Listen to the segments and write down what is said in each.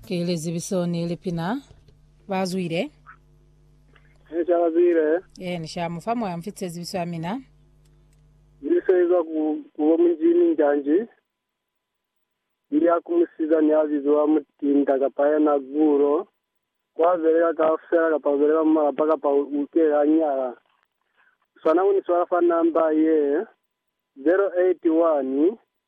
Ki lizibiso ni lipina ba zwile. Ni ca ba zwile. Ee, ni sha mu fa moya mfi tsezibiso ya mina. Ni se izwa ku, ku bo Munjimi Njanji. Ni ya ku musiza ni a bizwa Mutinda kapa yena Gulo. Ku a belela kaufela kapa ku belela mu malapa kapa u, u ke a nyala. Swana ku ni swala fa namba ye, 081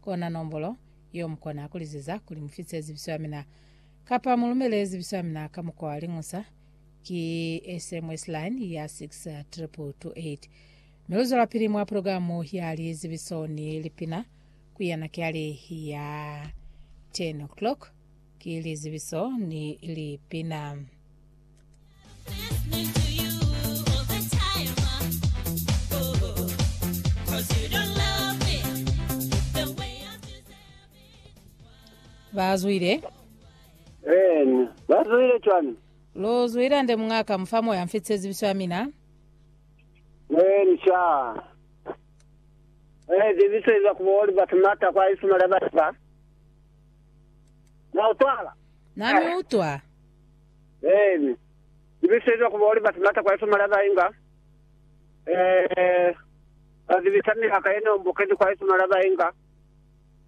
Kona nombolo yeo mukona kuliziza kuli mufise zibiso yamina kapa mulumele zibiso yamina ka mukwa wa liñusa, ki SMS line ya 62228. Mi luzwelapili mwa pulogilamu ya lizibiso ni lipina kuya nakiali ya 10:00 ki lizibiso ni lipina. Bazwile. Eeni. Bazwile cwani? Lo zwila nde muñaka mufa moya mfitse zibiso ya mina. Eeni sha. Eh, zibiso iza kuba oli batu mata kwa isuma la batu ba. Na utwala. Nami utwa. Eeni. Ni bisizwa ku bona batu mata kwa Yesu mali aba inga. Ee, ba zibisa miyaka ye no mbukezi kwa Yesu mali aba inga.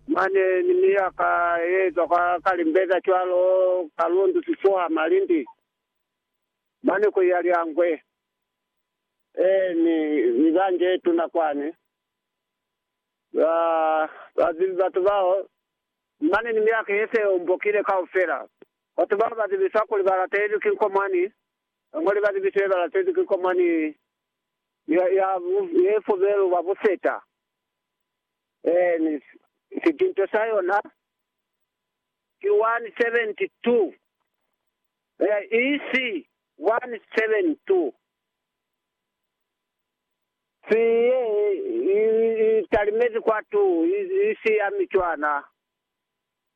Mane ni miyaka ye ezwa kwa ka limbeza cwalo, ka lundu, sifuha, malindi. Mane ku iya Lyangwe. Eeni, ni bangi ye tuna kwani. Ba, ba zibi batu bao. Mane ni miyaka ye se ombokile kaufela. Batu bao ba zibiswa kuli ba latelwi ki nkomwani, ba ñwali ba zibiso ye ba latelwi ki nkomwani ya ye fubelu ba buseta, ee, ni sitinto sa yona ki 172, ee, isi 172, si ye i talimezi kwatu, isi ya mi cwana.